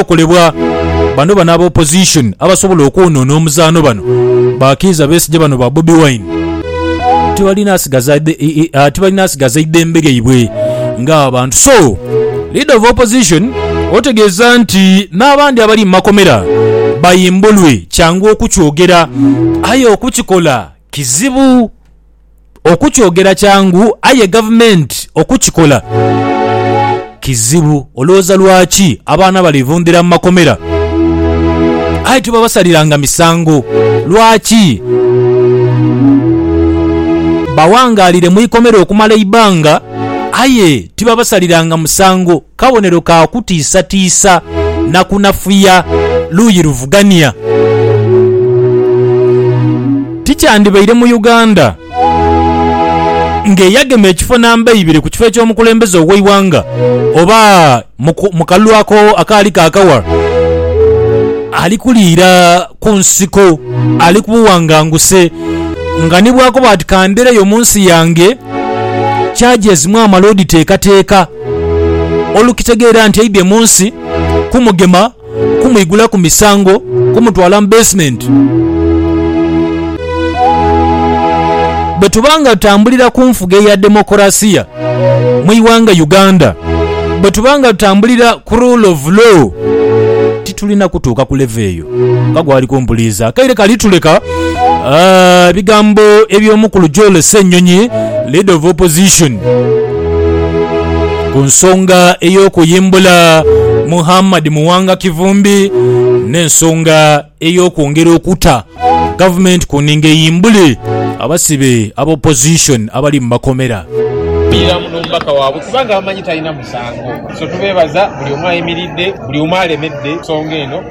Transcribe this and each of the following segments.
okolebwa. Bano bano aba opposition abasobola okwonona omuzaano bano bakiiza Besigye bano ba Bobi Wine tibalina asigaza tibalina asigaza idembe lyaibwe nga abantu so leader of opposition otegeeza nti n'abandi abali mu makomera bayimbulwe kyangu okukyogera aye okukikola kizibu. Okukyogera kyangu aye gavumenti okukikola kizibu. Olowooza lwaki abaana balivundhira mu makomera aye tibabasaliranga misango? Lwaki? Bawangaalire mu ikomera okumala eibanga aye tibabasaliranga musango. kabonero ka kutiisatiisa na kunafuya luuyi luvugania. Tikyandibaire mu Uganda ng'eyagema ekifo namba eibiri ku kifo eky'omukulembeze ow'eighanga oba mu kalulu ako akaali ka kawa ali kuliira ku nsiko ali ku buwanganguse nga ni bwakoba ati kandereyo mu nsi yange kyagyezimwa amale oditeekateeka. olukitegeera nti aidhye mu nsi kumugema, kumwigulaku misango, kumutwala mu beesimenti. Bwe tuba nga tutambulira ku nfuga eya demokolasiya mu ighanga Uganda, bwe tuba nga tutambulira ku rule of law, titulina kutuuka ku levo eyo. Nga gwali kumpuliza akaire kali tuleka. Ebigambo eby'omukulu Joel Ssenyonyi, Leader of Opposition, ku nsonga ey'okuyimbula Muhammad Muwanga Kivumbi n'ensonga ey'okwongera okuta Gavumenti ku ninga eyimbule abasibe aba Opposition abali mu makomera.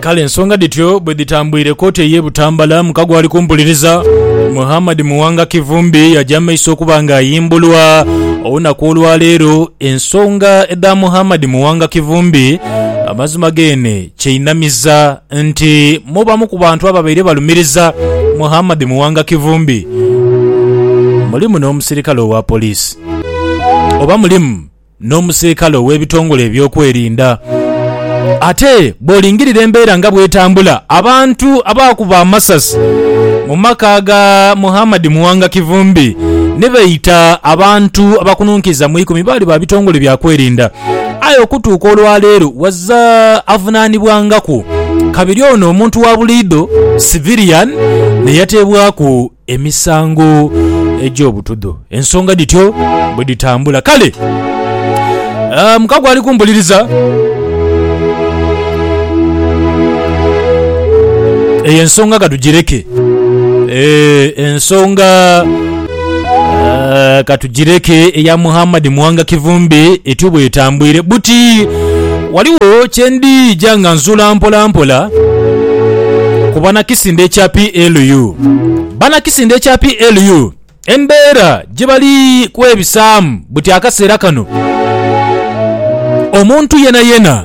Kale ensonga dhityo bwe dhitambwire kooti ey'e Butambala mu kago ali kumpuliriza, Muhammad Muwanga Kivumbi yaja mu maiso okuba nga ayimbulwa. Olunaku olwa leero ensonga edha Muhammad Muwanga Kivumbi amazima geene kyeinamiza nti mubamu ku bantu ababaire balumiriza Muhammad Muwanga Kivumbi mulimu n'omusirikale owa poliisi oba mulimu n'omusirikale ow'ebitongole ebyokwerinda. Ate bw'olingirira embeera nga bw'etambula, abantu abaakuba amasasi mu maka ga Muhammad Muwanga Kivumbi ni beeta abantu abakununkiza mu ikumi baali ba bitongole bya kwerinda. Aye okutuuka olwaleero wazira avunaanibwangaku kabiri ono omuntu wa buliidho, civilian, neyateebwaku emisango egy'obutudho. Ensonga dhityo bwedhitambula. Kale mukago ali kumpuliriza eyo ensonga katugireke. Eeh ensonga. Ah, katugireke eya Muhammad Muwanga Kivumbi etyo bwetambwire buti waliwo kyendija nga nzula mpola mpola ku banakisinda ekya PLU banakisinda ekya PLU embeera gyebali kwebisaamu buti akaseera kano omuntu yenayena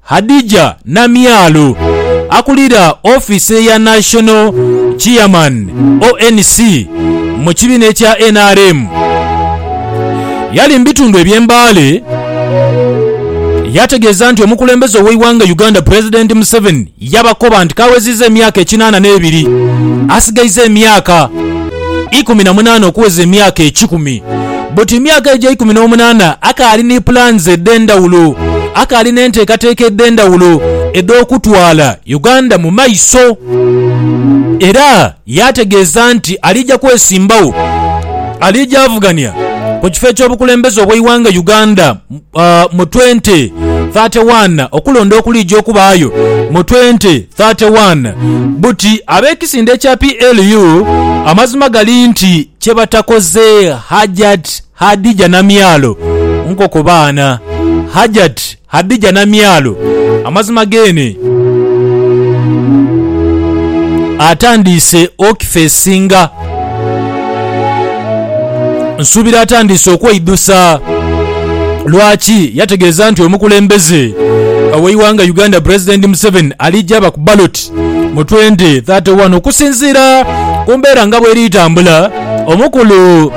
Hadijah Namyalo, akulira ofiisi ya National Chairman, ONC, mu kibiina ekya nrm yali mu bitundu eby'e Mbale yategeeza nti omukulembeze ow'eighanga Uganda Pulezidenti Museveni yabakoba nti k'aweziiza emyaka ekinaana n'ebiri asigaizaaemyaka ikumi na munaana okuweza emyaka ekikumi. But emyaka egyo eikumi n'omunaana akaali ni plans edh'endhawulo, akaali n'enteekateeka edh'endhawulo edh'okutwala Uganda mu maiso. Era yaategeeza nti aliija kwesimbawo, aliija avugania ku kifo eky'obukulembeze obw'eighanga Uganda uh, mu 2031 okulonda okuliija okubaayo mu 2031 buti ab'ekisinde ekya PLU amazima gali nti kye batakoze Hajat Hadija Namyalo nkoko baana Hajat Hadija Namyalo amazima geene atandiise okifeesinga Nsuubira atandiise okweidhusa lwaki yategeeza nti omukulembeze ow'eighanga Uganda Pulezidenti Museveni aliija aba ku baloti mu 2031 okusinziira ku mbeera nga bweri tambula. Omukulu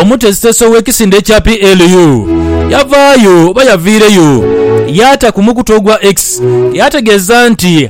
omutesitesi ow'ekisinde ekya PLU yavaayo oba yaviireyo yaata ku mukutu ogwa X yategeeza nti,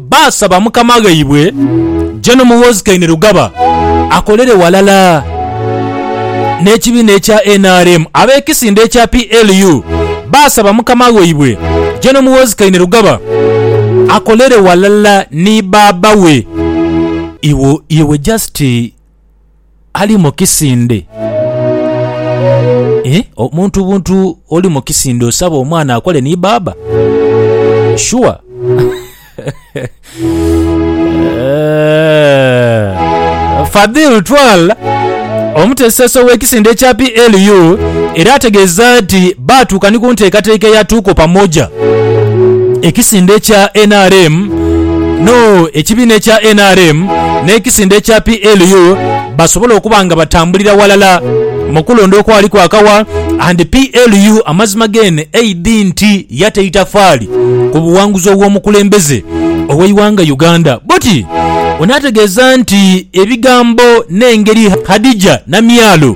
Baasaba mukama ghaibwe Gen Muhoozi Kainerugaba akolere ghalala n'ekibiina ekya nrm. Ab'ekisinde ekya PLU baasaba mukama ghaibwe Gen Muhoozi Kainerugaba akolere ghalala ni baaba we. Iwe just. ali mu kisinde. Eeh, omuntu buntu oli mu kisinde osaba omwana akole ni baaba? Sure. Eeh, Fadhil Twal, omuteesoteesi ow'ekisinde ekya PLU era ategeeza nti baatuuka ni ku nteekateeka eya Tuko Pamoja, ekisinde kya nrm no ekibiina ekya nrm n'ekisinde ekya PLU basobole okuba nga batambulira walala mukulonda okwali kwakawa and PLU amazima gen aid nti yata itafaali ku buwanguzi obw'omukulembeze oweiwanga Uganda but ono ategeeza nti ebigambo n'engeri Hadijah Namyalo